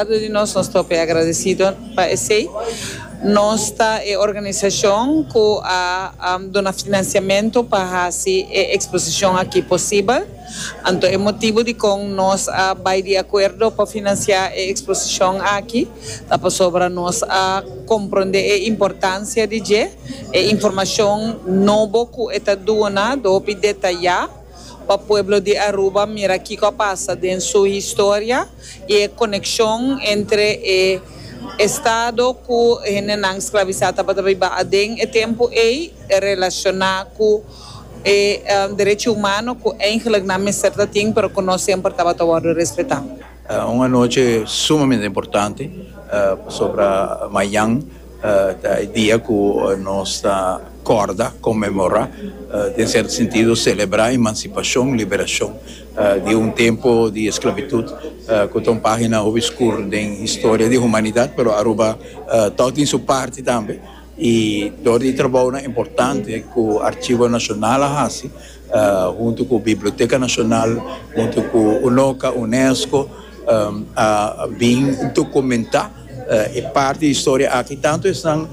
Lado di nos, nos propio agradecido pa esey. Nos ta e organisacion cu a duna financiamento pa haci e exposicion aki posibel. Anto e motibo di con nos a bay di acuerdo pa financia e exposicion aki ta pasobra nos a compronde e importancia di dje, e informacion nobo cu e ta duna do hopi detaya. Pa pueblo di Aruba mira kico a pasa den su historia y e coneccion entre e Estado cu hendenan sclavisa tabata biba aden e tempo ey relaciona cu e derecho humano cu eigenlijk nan mester ta tin pero cu no semper tabata wordo respeta. Un anochi sumamente importante pasobra mayan. Ta e dia ku nos ta kòrda, konmemorá, den sierto sentido selebrá emansipashon, liberashon, di un tempu di esklabitut ku ta un página hopi skur den historia di humanidat, pero Aruba tòg tin su parti tambe i dor di trabounan importante ku Archivo Nacional a hasi, huntu ku Biblioteka Nashonal, huntu ku UNOCA, UNESCO, a bin dokumentá e parti di historia aki, tantu esnan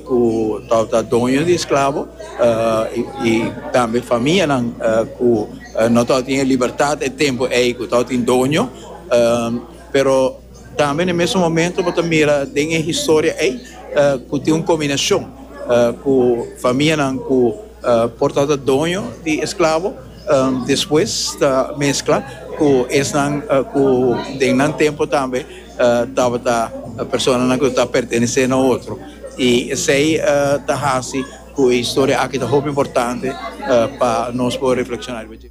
ku tabata doño di esklabo i tambe famianan ku no tabata tin e libertat e tempu ei ku tabatin doño, pero. Tambe na e mesun momento bo ta mira den e historia ei ku tin un kombinashon ku famianan ku por tabata doño di esklabo despues ta meskla ku esnan ku den nan tempu tambe tabata personanan ku ta pertenesé na otro i esei ta hasi ku e historia aki ta hopi importante pa nos por reflekshoná riba dje.